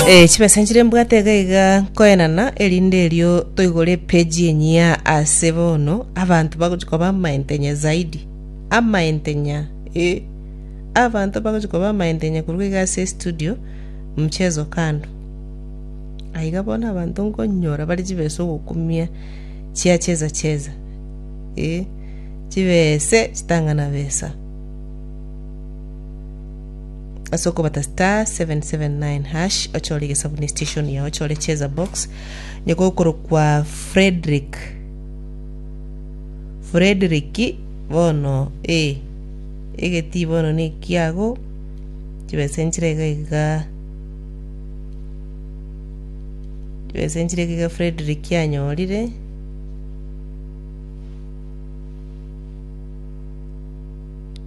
Eh, chibesa nchire mbwate iga iga nkoenana erinde erio toigore epeji enyia ase bono abanto bagochikoba amaentenya zaidi amaentenya eh. abanto bagochikoba amaentenya korwa iga ase estudio mchezo kando aiga bono abanto nkonyora bare chibesa ogokumia chia cheza cheza eh, chibese chitang'ana besa ase okobata star 779# ochore egesabuni station yao ochore cheza box nyoko okorokwa frederick frederick bono ee egeti bono nekiago chibesa enchire iga iga chibesa enchire iga iga frederick anyorire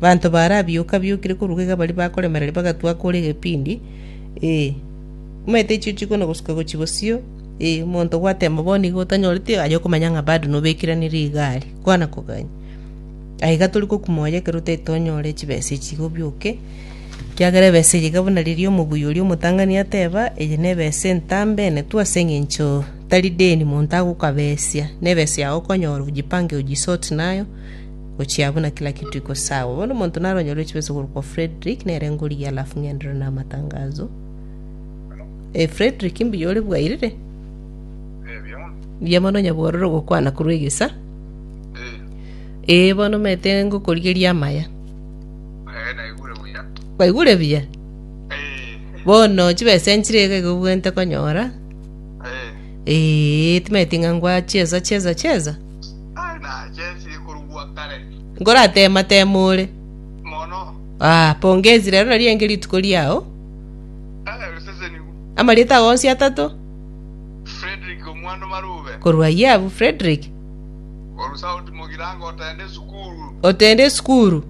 Abanto baarabioka-biokire korwa iga baria bakoremereria bagatwa akore egepindi, ee, omanyete echio chikono gosuka gochia bosio, ee, omonto gwateema bono iga otanyoreti aye okomanya ng'a bado nobekeranire iga aria, kwana kogania. Aye iga tori gokuma oye ekero otari tonyore chibesa echi iga obioke, ekiagera ebesa eye iga buna riria omobui oria omotang'ani ateeba, eye nebesa entambe enetwe ase eng'encho tari deni monto agokabesia, nebesa yago okonyora ojipange oji sort nayo, Gochia buna kila kitu iko sawa. Bono omonto naronyore chibesa korwa kwa Frederick, nere ngorigia alafu ng'enderere na amatangazo. Eh, Frederick mbuya ore bwairire? Ebio. Mbuya mono nyabwororo gokwana korwa egesa. Eh. Eh, bono mete ngokorigeria amaya. Eh, naigure buya. Baigure buya. Eh. Bono chibesa enchire iga igo bwente konyora. Eh. Eh, timeti ng'a ngwa cheza cheza cheza. Ngoratema tema ore. Ah, pongezi rero nari enge rituko riao. Amarieta ao onsi atato? Korwa Yiabu Fredrick. Otende esukuru?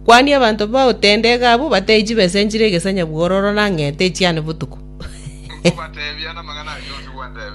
Kwani abanto ba otende iga abwo bateyi chibesa enchire egesanya bwororo na ng'ete echiane botuko?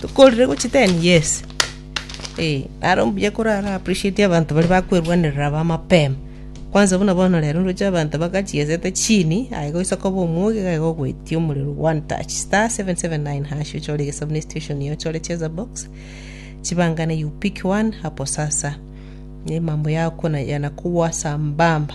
Tokorire gochia ten years. Eh, naro mbuya kora ara appreciate abanto baria bakwerwanerera aba mapema. Kwanza buna bono rero ndoche abanto bagachiesete chini, aye goisa koba omwogi iga iga ogoetia omorero one touch. Star 779#, ochore egesabu ne situation yago, ochore cheza box, chibangane you pick one hapo sasa. Ne mambo yao kona yanakogwa sambamba.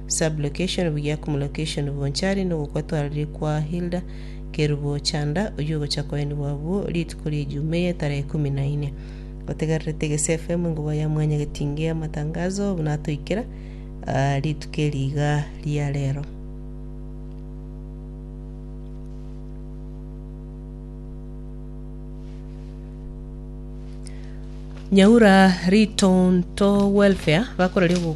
Sublocation buya Cumlocation Bonchari nogokwa twarorire kwa Hilda Kerubo Chanda oyio ogocha koenigwa abwo rituko ria Ejumaiya etarehe ikomi na ine. Otegererete Gesi FM engoba ya Mwanya Getinge y'amatangazo buna atoikera aa rituko eri iga ria rero. Nyaura Ritonto Welfare bakoraria obo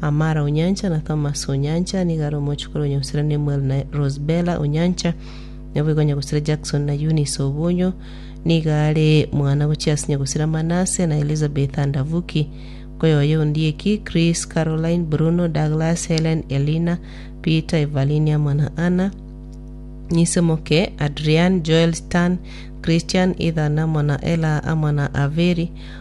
Amara o nyancha, na Thomas o nyancha, nigo are omochie kore onya gosira Nemuel na Rosebela o nyancha, naboigo onya gosira Jackson na Eunice o bonyo, nigo are mwana gochia ase nyagosira Manase, na Elizabeth and Avuki, nkoyoyia ondieki, Chris, Caroline, Bruno, Douglas, Helen, Elina, Peter, Evalyn amo na Anna, Nyisemoke, Adrian, Joel, Stan, Christian, Ethan amo na Ella amo na Averi,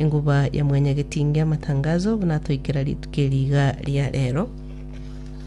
Enguba ya Mwanyagetinge Amatangazo buna atoikera rituko eri iga ria rero.